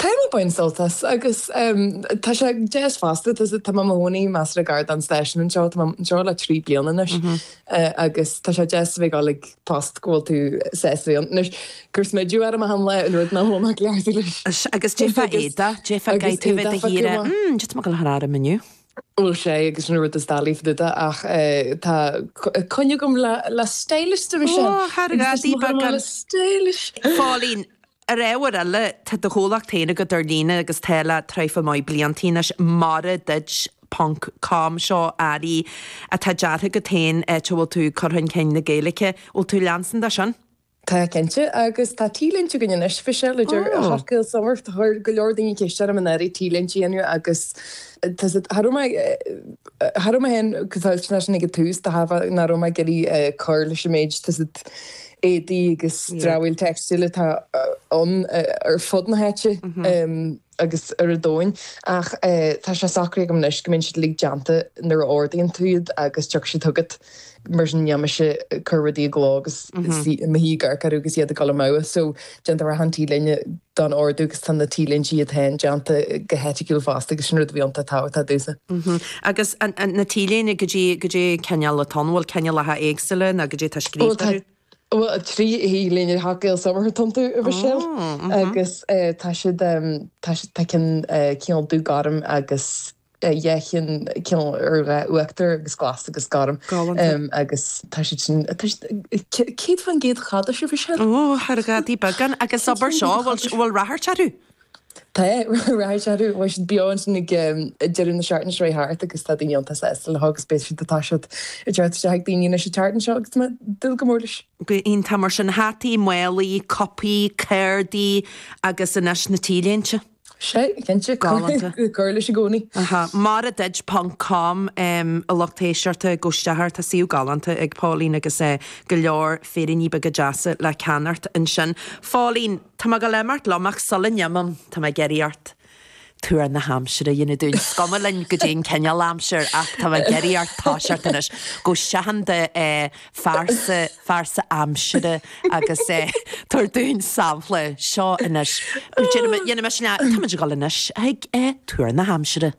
Táim ag baint sult as agus tá sé deas fosta. Tá mé i mo chónaí measartha gar don stáisiún anseo. Tá mé anseo le trí bliana anois agus tá sé deas a bheith ag dul ag post go bhfuil tú sásta ann. Anois ag cur smideadh orm a shamhla an rud ná thóg mé ceart anois. Agus déarfá Aodha, déarfá Gae, tú a bheith de shíor a, mm, d'fhéadfadh mé go le chur orm inniu. Bhuel, 'sé agus sin an rud is doilí fá dtaobh de ach tá coinne agam le stylist, dúirt sé. Ó, thar a gcás, í beagán stylish. Phóilín, Ar ábhar eile, tá do chomhlacht féin agat ar líne agus tá le tréimhse mhaith blianta anois. Mara duit ponc com seo earraí atá deartha agat féin, áit a bhfuil tú ag cur chun cinn na Gaeilge. Bhfuil tú ag leanstan de sin? Tá cinnte, agus tá T-léinte againn anois faoi seo, a deir Hot Gael Summer. Chuir go leor daoine ceist orm an éirí T-léinte a dhéanamh agus tá's agat, cha raibh mé, cha raibh mé féin go toilteanach sin ag an tús, de thairbhe nach raibh mé ag iarraidh cur leis an méid, tá's agat, éadaí agus dramhaíl teicstil atá ann ar fud na háite agus ar an domhan ach tá sé socraithe agam anois go mbíonn siad uilig déanta nuair a ordaíonn tú iad agus tiocfaidh siad chugat mar sin níl mise ag cur rudaí i gcló agus suí i mo thíghearc agus iad ag dul amú so Déantar achan T-léine don ordú agus tá na T-léintí iad féin déanta go heiticiúil fosta agus sin rud a bhí iontach tábhachtach domhsa. Agus na T-léinte goidé goidé an cineál atá ann, bhfuil cineálacha éagsúla nó goidé atá scríofa orthu? Bhuel trí T-léine Hot Gael Summer atá iontu ar bhsiúil agus tá siad tá siad tá ceann cineál dúghorm agus Dhá cheann, cineál ar dhath uachtair agus glas agus gorm. Galánta. Agus tá siad sin, tá siad, céad faoin gcéad cadás a bhí siad. Ó, ar dhaidí beagán. Agus abair seo, bhfuil, bhfuil ráchairt orthu? Tá ráchairt orthu, chuaigh siad beo ansin ag deireadh na seachtaine seo a chuaigh thart agus tá daoine iontach sásta leo agus beidh siad atá siad ag teacht isteach ag daoine anois an tseachtain seo agus tá mé ag dúil go mór leis. Go iontach mar sin, hataí, málaí, cupaí, cártaí agus anois na T-léinte. Sea, cinnte. Galánta. Ag cur leis i gcónaí. Aha. Mara duit ponc com a lucht éisteachta, gabh isteach air, tá suíomh galánta ag Póilín agus go leor féiríní beaga deasa le ceannacht ansin. Phóilín, tá mé ag goil ag imeacht liom ach sula ndéanaim, tá mé ag iarraidh ort tuar na haimsire a dhéanamh dúinn. Is cuma linn goidé an cineál aimsir ach tá mé ag iarraidh ort toiseacht anois gabh isteach i do. phearsa, phearsa aimsire agus eh tabhair dúinn sampla, seo anois, déanaim, dhéanaimis leath, táimid ag dul anois chuig eh tuar na haimsire.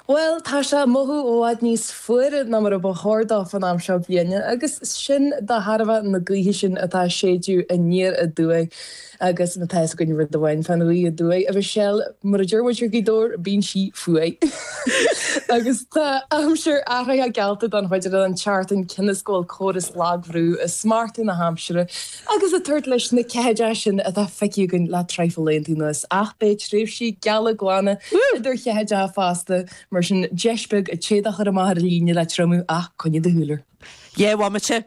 Bhuel, tá sé ag mothú i bhfad níos fuaire ná mar a ba chóir dó fan am seo bliana agus sin de thairbhe na gaoithe sin atá ag séideadh aniar aduaidh. Agus má tá fhios againn rud amháin fán ghaoth aduaidh, a Mhichelle, mar a deir muid ar Ghaoth Dobhair, bíonn sí fuar. Agus tá aimsir athraithe geallta don chuid eile den tseachtain, cionn is go bhfuil córas lagbhrú ag smachtú na haimsire agus ag tabhairt leis na ceathaideacha sin atá feicthe againn le traidhfil laethanta anuas. Ach beidh tréimhsí geala glana idir cheathaideacha fosta, mar sin deis beag an t-éadach a chur amach ar líne le triomú ach coinnigh do shúil air. Dhé bhomaite!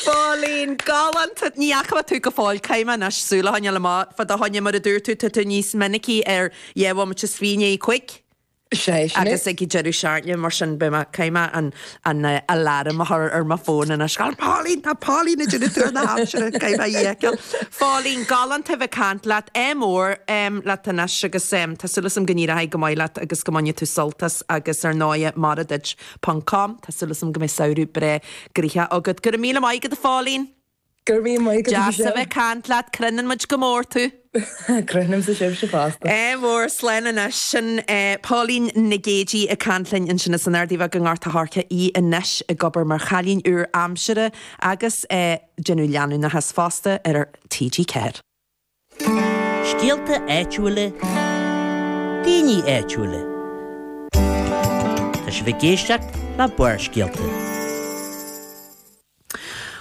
Fóillín galánta! Ní fhaca tú go fóill Kyme anois, sula thána le mo, fa do thána mar a dúirt tú, tá tú níos minicí ar dhé bhomaite 's bhí inné cuig. Sé sin é. Agus ag an deireadh seachtaine, mar sin beidh mé, Kyme, an, an eh, aláram a chur ar mo fón anois. Gal Pauline, tá Pauline ag déanamh tú na haimsire, Kyme a dhéiciil. Fóillín galánta bheith cant leat, é mór em, leat anois agus em, tá sula sam gníraigh go maith leat agus go mbainne tú soltas. Agus ar ndóighe, mara duit. Ponc. com, tá súil agam go mbeidh samhradh breá gnoitheach agat. Go raibh míle maith agat, a Phóilín! Go raibh míle maith agat, a Mhichelle! Deas a bheith ag caint leat. Crothnaíonn muid go mór tú. Crothnaímsa sibhse fosta. Ádh mór, slán anois. Sin Póilín Nic Géidigh ag caint linn ansin as an Ardaidh Bheag i nGort a' Choirce, í anois ag obair mar chailín úr aimsire agus ag déanamh leanúnachas fosta ar TG4. Scéalta áitiúla, daoine áitiúla. Tá sibh ag éisteacht le Barrscéalta.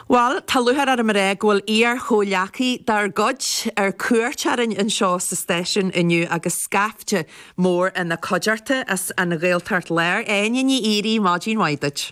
Bhuel, tá lúcháir orm a rá go bhfuil iar-chomhleacaí dár gcuid ar cuairt orainn anseo sa stáisiún inniu agus scaifte mór ina cuideachta as an Ghaeltacht Láir, Áine Ní Dhíoraí, maidin mhaith duit.